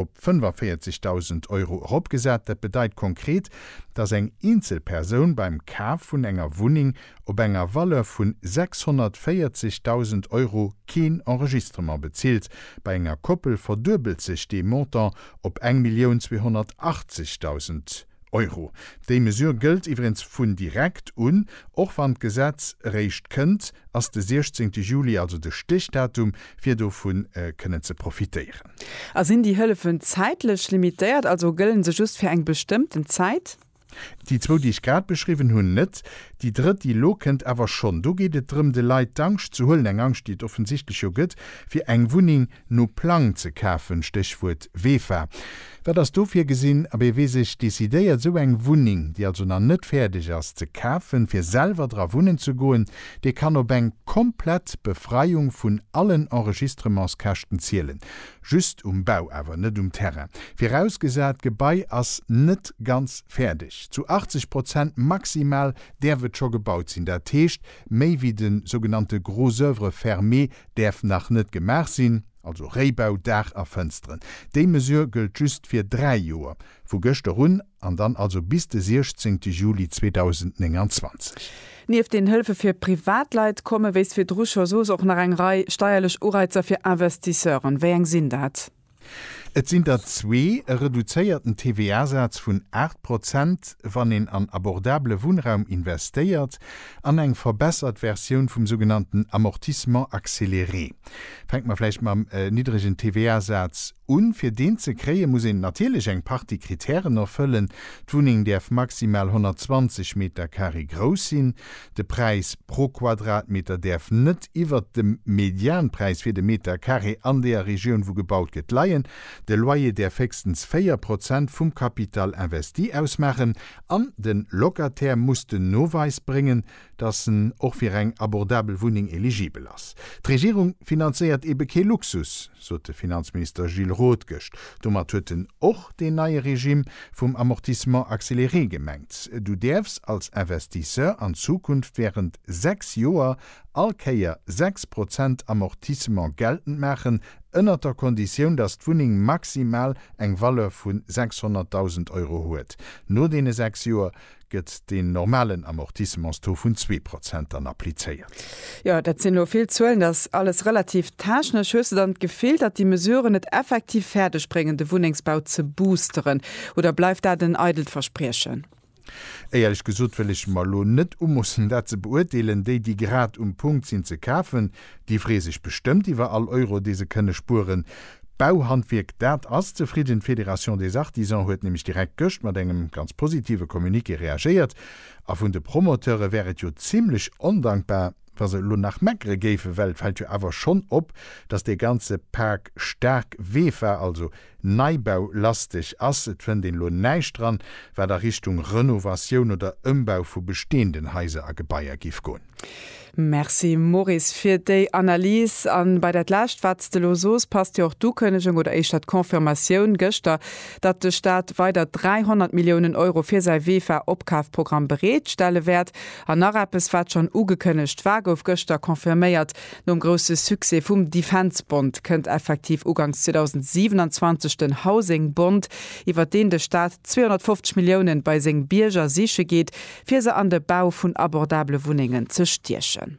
op 45.000 Euro eropgesat. Dat bedeit konkret, dass eng eenzel Persoun beim Kaf vun enger Wunneng op enger Valeur vun 640.000 Euro keen Enregistrement bezilt. Bei enger Koppel verduebelt sech dee Montant op eng Millioun 280.000. Euro. Déi Mesure gëllt iwwregens vun direkt un, och wann d'Gesetz eréischt kënnt, ass de 16 Juli also de Stichdatum, fir dovu kënnen ze profitéieren. A sinn déi Hëllefen zäitlech limitéiert, also gëllen se just fir eng bestëmmten Zäit? Déi zwou, déi ech grad beschriwwen hunn, net. Déi drëtt, déi elo kënnt, awer schonn. Do geet et drëm, de Leit d'Angscht ze huelen, eng Angscht, déi et offensichtlech jo gëtt, fir eng Wunneng no Plang ze kafen, Stéchwuert VEFA. Wat ass do virgesinn? A wee wee sech decidéiert, esou eng Wunneng, déi also nach net fäerdeg ass, ze kafen, fir selwer dra wunnen ze goen, dee kann op eng komplett Befreiung vun allen Enregistrementskäschten zielen. Just um Bau awer, net um Terrain. Virausgesat, d'Gebai ass net ganz fäerdeg. Zu 80 Prozent maximal däerf et scho gebaut sinn. Dat heescht, méi wéi de sougenannte gros œuvres fermées däerf nach net gemaach sinn. also Réibau, Daach a Fënsteren. Déi Mesure gëllt just fir dräi Joer, vu gëschter un, an dann also bis de 16 Juli 2029. Nieft den Hëlfe fir Privatleit komme wéi virdru scho soss och nach eng Rei steierlech Ureizer fir Investisseuren. Wéi eng sinn dat? Et sinn der zwee, e reduzéierten TVA-Saz vun 8 Prozent, wann een an abordabele Wunnraum investéiert, an eng verbessert Versioun vum sougenannten Amortissement accéléré. Fänke mer vläicht mam niddregen TVA-Saz un. Fir deen ze kréien, muss een natierlech eng Partie Kritären erfëllen. D'Wunneng däerf maximal 120 Metercarré grouss sinn. De Präis pro Quadratmeter däerf net iwwert dem Medianpräis fir de Metercarré an deeër Regioun, wou gebaut gëtt, leien. De Loyer däerf héchstens 4 Prozent vum Capital investi ausmaachen an de Locataire muss den Noweis bréngen, dass en och fir eng abordabel Wunneng eligibel ass. D'Regierung finanzéiert eebe kee Luxus, sot de Finanzminister Gilles Roth gëscht. Domat huet en och deen neie Regime vum Amortissement accéléré gemengt. Du däerfs als Investisseur an Zukunft während sechs Joer all Kéier sechs Prozent Amortissement geltend maachen, ënnert der Konditioun, dass d'Wunneng maximal eng Valeur vu 600.000 Euro huet. No deene sechs Joer. gëtt deen normalen Amortissements-Taux vun zwee Prozent dann applizéiert. Jo, dat sinn elo vill Zuelen, dat ass alles relativ technesch. Hues de dann d'Gefill, datt déi Mesuren et effektiv fäerdeg bréngen, de Wunnengsbau ze boosteren, oder bleift dat en eidelt Verspriechen? Éierlech gesot wëll ech mer elo net umoossen, dat ze beurteelen. Déi, déi grad um Punkt sinn ze kafen, Déi free sech bestëmmt iwwer all Euro, dee se kënne spueren. D'Bauhandwierk, dat ass zefridden. D'Fédération des Artisans huet nämlech direkt gëscht mat engem ganz positive Communiqué reagéiert. A vun de Promoteure wär et jo zimlech ondankbar, wa se elo nach meckere géifen, well et fält jo awer schonn op, datt dee ganze Pak staark weech war. Also Neibaulasteg ass. Et fënnt een elo näischt dran, wat a Richtung Renovatioun oder Ëmbau vu besteenden Haiser a Gebaier giff goen. Merci Maurice fir déi Analys. A bei dat Lescht wat s de elo soos, passt jo och d'Ukënnegung oder éischter d'Confirmatioun gëschter, datt de Staat weider 300 Milliounen Euro fir säi Vefa-Opkafprogramm bereet stelle wäert. An nach eppes wat schonn ugekënnegt war, gouf gëschter confirméiert, Nom grousse Succès vum Defence Bond kënnt effektiv ugangs 2027 den Housing Bond, iwwert deen de Staat 250 Milliounen bei seng Bierger siche geet, fir se an de Bau vun abordable Wunnengen ze stiechen.